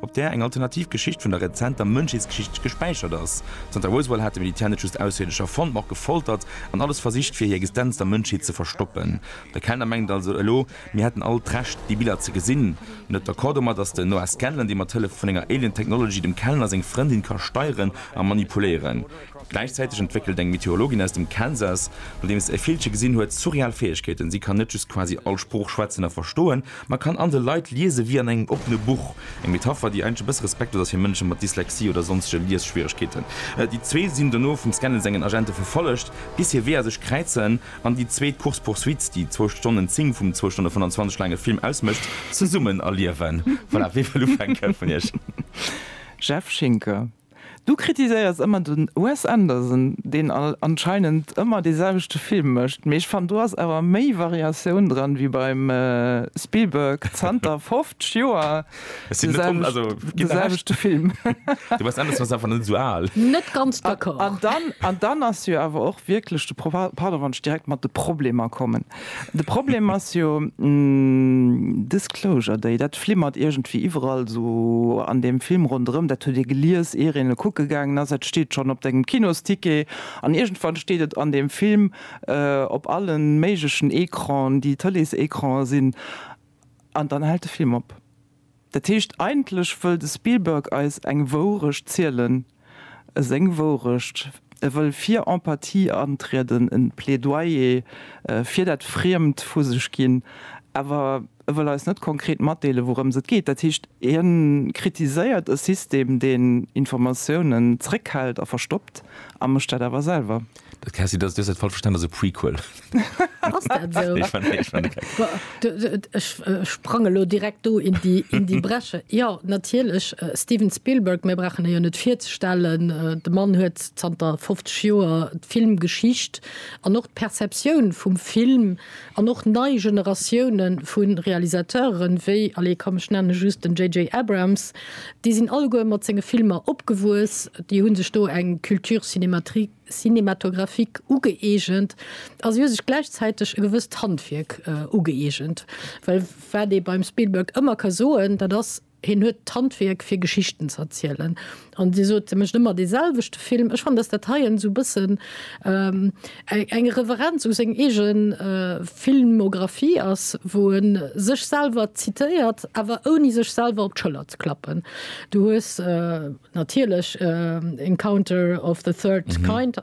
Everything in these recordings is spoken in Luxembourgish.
op där eng alternativ Geschicht vun der rezenter Mënschheetsgeschicht gespäichert ass. Zanter Roswell hat de Militär net just Ausserierdescher fonnt, ma och gefoltert an alles versicht, fir hir Existenz der Mënschheet ze verstoppen. De Kellner mengt also elo, mir hätten all d'Recht, déi Biller ze gesinn. En huet d'Accord domat, datt den Noah Scanlan, dee mat Hëllef vun enger Alien Technology dem Kellner seng Frëndin ka steieren a manipuléieren. Gläichzäiteg entwéckelt eng Meteorologin aus dem Kansas, nodeems se e Villche gesinn huet, surreal Fäegkeeten. Si kann net just quasi all Sprooch schwätzen a verstoen, Ma kann an de Leit liese wéi an engem oppene Buch, eng Metapher, déi eigentlech e bësse respektlos ass fir Mënsche mat Dyslexie oder sonsege Liesschwieregkeeten. Déi zwee sinn dono vum Scannell sengen Agente verfollegt, bis hir Weeër sech kräizen an déi zweet Course poursuite, déi zwou Stonnen zéng vum zwou Stonne 25 laange Film ausmécht, zesummen erliewen. Voilà, wee wëll ufänken vun iech? Jeff Schinker, Du kritiséiers ëmmer den Wes Anderson, deen anscheinend ëmmer dee selwechte Film mécht, mee ech fannen do ass awer méi Variatioun dran wéi beim Spielberg zanter 50 Joer de selwechte Film. De Wes Anderson ass einfach net esou al. Net ganz d'accord. An dann ass jo awer och wierklech de Pro, pardon wann ech direkt mat de Problemer kommen, De Problem ass jo, Disclosure Day, dat flimmert iergendwéi iwwerall sou an deem Film ronderëm. Dat hutt Dir gelies, ier een e kucke gaangen ass. Et steet schonn op dengem Kinosticket an iergendwann steet et an deem Film op alle méiglechen Ecranen, déi Tëleesecrane sinn, an dann hält de Film op. Dat heescht, eigentlech wëll de Spielberg eis eng Wourecht zielen, seng Wourecht. E wëll fir Empathie antrieden, e Plädoyer fir dat Friemd vu sech ginn, awer e wëll eis net konkret matdeelen, wourëms et geet. Dat heescht, hien kritiséiert e System, deen Informatiounen zréckhält a verstoppt, a mécht dat awer selwer. Dat Cassie, dat, du hues dat falsch verstanen, dat ass e Prequel. Ass dat sou? Nee, schwätz, nee, schwätz, nee. Boah, du, du, ech äh, sprang elo direkt do in déi, in déi Bresche. Ja, natierlech, äh, Steven Spielberg, mir brauchen e jo net virzestellen, äh, de Mann huet zanter 50 Joer d'Filmgeschicht an och d'Perceptioun vum Film, An och nei Generatioune vu Realisateuren, wéi, allez, komm, ech nenne just den JJ. Abrams, déi sinn alleguer mat senge Filmer opgewuess, déi hu sech do eng Culture cinématographique ugëeegent a si hu sech gläichzäiteg e gewësst Handwierk ugëeegent. Well wat ee beim Spielberg ëmmer ka soen, dat ass, Hien huet d'Handwierk fir Geschichten ze erzielen. An Dir sot, e mécht ëmmer dee selwechte Film. Ech fannen, dass dat hei en esou e bëssen eng Reverenz u seng eege Filmographie ass, wou e sech selwer zitéiert, awer ouni sech selwer op d'Schëller ze klappen. Du hues natierlech Encounter of the Third Kind.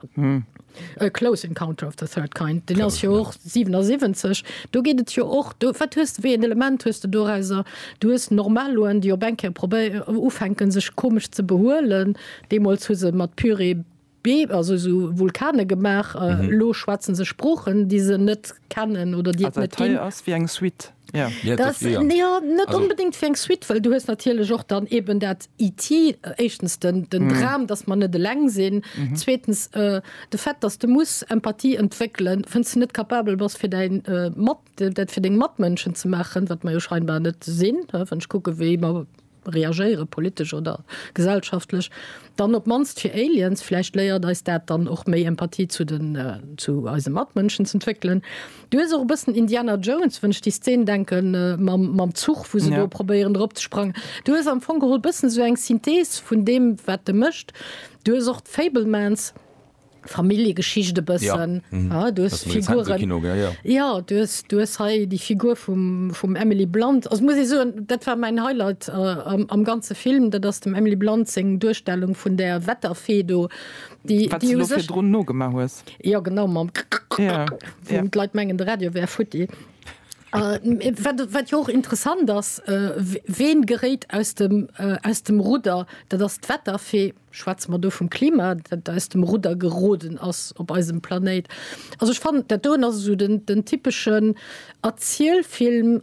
A close encounter of the third kind, deen ass jo och 77. Do geet et jo och, do, wat hues de, wéi en Element hues de dorauser? Du hues Normaloen, déi op eng Kéier probé-, ufänken sech komesch ze behuelen. Deemools hu se mat Pyrrhe Be-, also esou Vulkane gemaach. Elo schwätze se Sproochen, déi se net kennen oder déi et net ginn. Ass dat hei ass wéi eng Suite. net onbedingt fir eng Suite, well du hues natierlech och dann eben dat IT éischtens den den Dram, datt mer net eleng sinn, zweetens de Fait, datt de muss Empathie entwéckelen, wann s de net capabel bass fir däi mat dat fir deng Matmënschen ze maachen, wat mer jo scheinbar net sinn, wann ech kucke wéi mer. reagéieren, politesch oder gesellschaftlech, dann op d'mannst fir Aliens, vläicht léiert eis dat dann och méi Empathie zu den, zu eise Matmënschen z'entwéckelen. Du hues och e bëssen Indiana Jones, wann ech déi Szen denken mam, mam Zuch, wou se do probéieren drop ze sprangen. Du hues am Fong geholl bëssen esou eng Synthese vun deem, wat e mécht. Du hues och d'Fabelmans, Familljegeschicht e bëssen. Ja, du hues Figuren, ja du hues, du hues hei déi Figur vum, vum Emily Blunt, also muss ee soen, dat war mäin Highlight am, am ganze Film, dat ass dem Emily Blunt seng Duerstellung vun där Wetterfee do, déi, déi u sech. Wat s de elo virdrun nogemaach hues. Jo, genau, mam wou d'Leit mengen, de Radio wär futti. Wat, wat jo och interessant ass, ween geréit aus dem, aus dem Rudder? Dat ass d'Wetterfee. Schwätze mer do vum Klima, dat aus dem Rudder geroden ass op eisem Planéit? Also ech fannen, dat doen ass esou den typeschen Erzielfilm,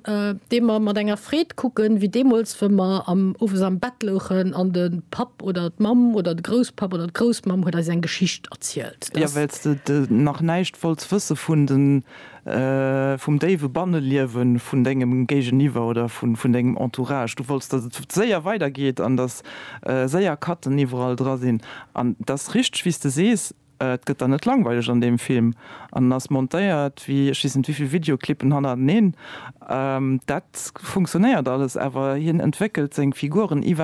dee mer mat enger Freed kucken, wéi deemools, wou mer owes am Bett louchen an de Papp oder d'Mamm oder de Grousspapp oder d'Groussmamm huet eis eng Geschicht erzielt. Jo, well s de nach näischt wollts wësse vun de vum déiwe Banneliewe vun dengem Géigeniwwer oder vun dengem Entourage. Du wollts, datt et séier weidergeet an datt séier Cutten iwwerall dra sinn. An et ass richteg, wéi s de sees, et gëtt der net langweileg an deem Film. An en ass montéiert wéi ech weess net wéivill Videoclippen hannerteneen. Dat funktionéiert alles, awer hien entwéckelt seng Figuren iwwer.